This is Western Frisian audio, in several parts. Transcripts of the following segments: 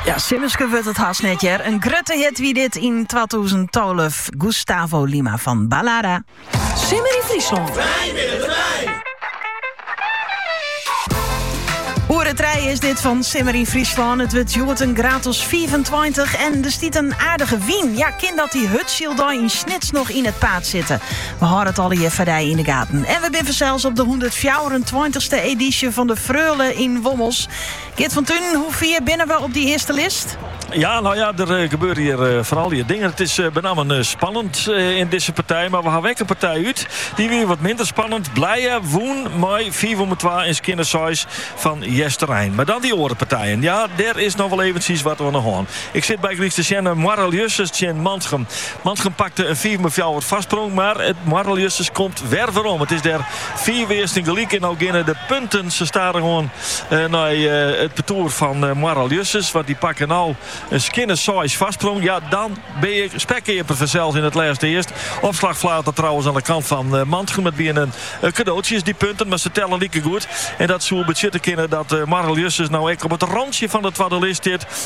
Ja, simmersker wurdt it hast net hear. In grutte hit wie dit yn 2012. Gusttavo Lima fan Balada. Simmer yn Fryslân. Oere 3 is dit fan Simmer yn Fryslân. It wurdt hjoed in graad as 25 en der stiet in aardige wyn. Ja, kin dat dy hurdsyldei yn Snits noch yn it paad sitte. We hâlde it allegear foar dy yn de gaten. En we binne fansels op de hûndertfjouwerentweintichste edysje fan de Freule yn Wommels. Geert van Tuinen, hoe fier binne we op dy earste list? Ja, no ja, der eh, gebeure hjir eh, fan allegear dingen. It is eh, benammen spannend yn dizze partij. Mar we hawwe ek in partij út. Dy wie wat minder spannend. Blije wûn mei 5 om 2 en skjinne seis fan Easterein. Mar dan dy oare partijen. Ja, dêr is noch wol eventsjes wat oan 'e gong. Ik sit bygelyks te sjen nei Moarre-Ljussens tsjin Mantgum. Mantgum pakte in fiif mei fjouwer foarsprong, mar it Moarre-Ljussens komt wer werom. It is dêr fiif earsten gelyk en no geane de punten sa stadichoan nei it partoer fan Moarre-Ljussens, want dy pakke no in skjinne seis foarsprong. Ja, dan bin je spekkeaper fansels yn it lêste earst. Opslachflater trouwens oan de kant fan Mantgum. It wiene kadoatsjes dy punten, mar se telle likegoed. En dat soe betsjutte kinne dat Moarre-Ljussens no ek op it rantsje fan de twadde list stiet.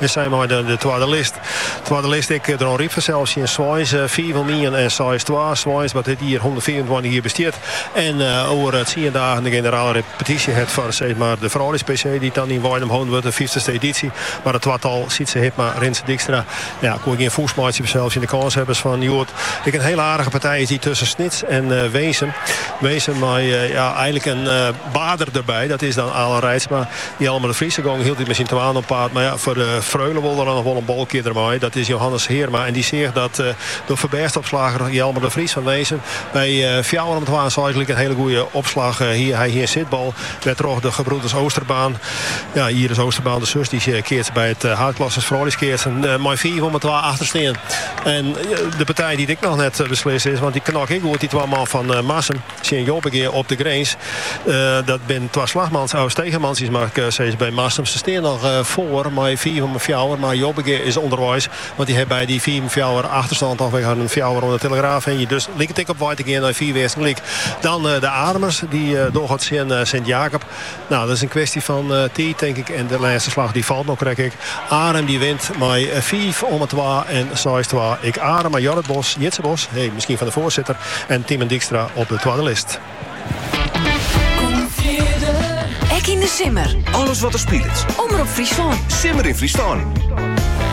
Hy sei mei de twadde list. Twadde list ek Dronryp fansels tsjin Sweins, fiif om ien en seis twa. Sweins, wat dit jier hûndertfiifentweintich jier bestiet en oer tsien dagen de generale repetysje hat foar sis mar de frouljus PC, dy't dan yn Weidum holden wurdt, de fyftste edysje. Mar it twatal, Sietse Hibma, Rinse Dykstra, ja, koe gjin fûs meitsje fansels tsjin de kânshebbers fan hjoed. Ek in hiele aardige partij is dy tusken Snits en Winsum. Winsum mei ja, einlik in Baarder derby, dat is dan Alan Reitsma. Jelmer de Vries gong hieltyd mei syn twaen op paad, mar ja, foar de Freule wol der noch wol in balkearder mei. Dat is Johannes Heerma en dy seach dat de foarbêstopslagger Jelmer de Vries fan Winsum by fjouwer om twa en seis gelyk in hiele goede opslach hie. Hy hie in sitbal wêrtroch de gebroeders Oosterbaan, ja, Iris Oosterbaan de sus, dy keatst by it haadklasse frouljuskeatsen, mei fiif om twa achter steane. En de partij dy't ek noch net beslist is, want dy knokke ek goed, dy twa man fan Marsum. Tsjin Jobbegea op de grins. Dat binne twa Slagmans, Aus Stegeman sis mar seis by Marsum. Se steane noch foar mei fiif om fjouwer, mar Jobbegea is ûnderweis, want dy hat by dy fiif om fjouwer achterstân toch wer in fjouwer oan 'e telegraaf hingjen. Dus liket ek op wei te gean nei fiif earsten gelyk. Dan de Arumers, dy dogge it tsjin Sint Jakob. No, dat is in kwestje fan tiid tink ik en de lêste slach dy falt no krekt. Ek Arum dy wint mei fiif omme twa en seis twa, ek Arum mei Jorrit Bos, Jitse Bos, hé miskien fan de foarsitter, en Timen Dykstra op de twadde list. Ek yn de simmer. Alles wat der spilet. Omrop Fryslân. Simmer yn Fryslân.